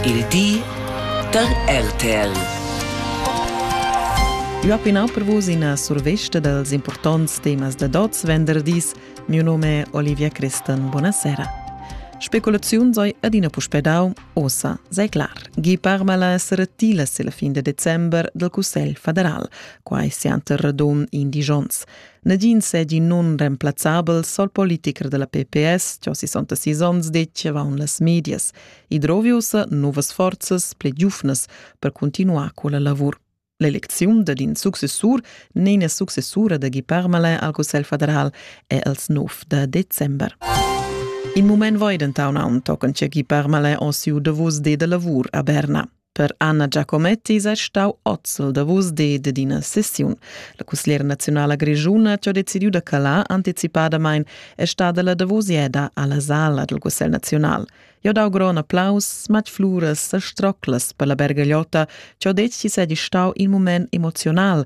Il di da RTL. Eu pinau per vus ina survesta dals importants temas da dots venderdis. Miu nome è Olivia Christen. Buonasera. Speculaziun sei adina puspè dau, ossa sei clar. Gi parmala essere tilas la fin de december del Cussel federal, quai sianter radun in digions. Nadin segi nun remplazzabel sol politiker della PPS, ciò 66 ons diceva on las medias. e drovi ussa novas forzas pli giuvnas per cuntinuar quella lavur. L'elecziun dad in successur n'è successura da Guy Parmelin al Cussegl federal è als 9 da december. In mument voi denton aunc tochen che Guy Parmelin o siu davos de da lavur a Berna. Per Anna Giacometti sei stau ozzel davos de ed ina sessiun. La cusgliera nazionala grischuna che ha decidiu da calar anticipadamain è stada la davosieda alla sala del Cussegl nazional. Jo dau gron applaus, smatg fluras e stroclas per la bergagliotta, che ho detg chi sei stau in moment emocional,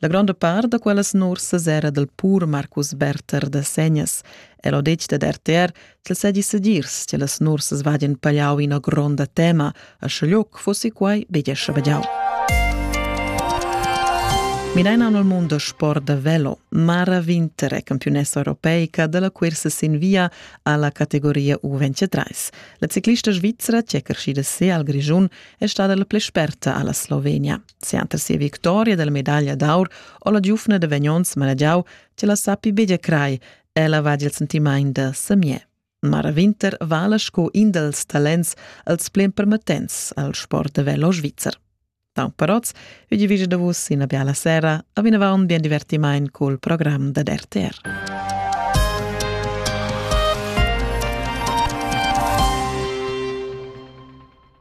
La gronda part da quellas nursas era dal pur Marcus Berther da Segnas. El ho detg dad RTR ch'el sedi sedirs che las nursas vadien pagliau ina gronda tema, a schaglioc fossi quai bedia schabagiau. Mireina nel mondo sport da velo, Mara Winter è campionessa europeica della cursa sin via alla categoria U23. La ciclista svizzera, che è crescida se al Grigiun, è stata la plei sperta alla Slovenia. Sianta sia victoria della medaglia d'aur ho la giufna da Vagnons managiau che la sappi begia crai, ella va il sentimaint da Samier. Mara Winter vala sco in dels talents als plen permettents al sport da velo svizzer. Tau paroz, vi di vige da vus ina biala sera, a vinavant bien divertimaint col program da RTR.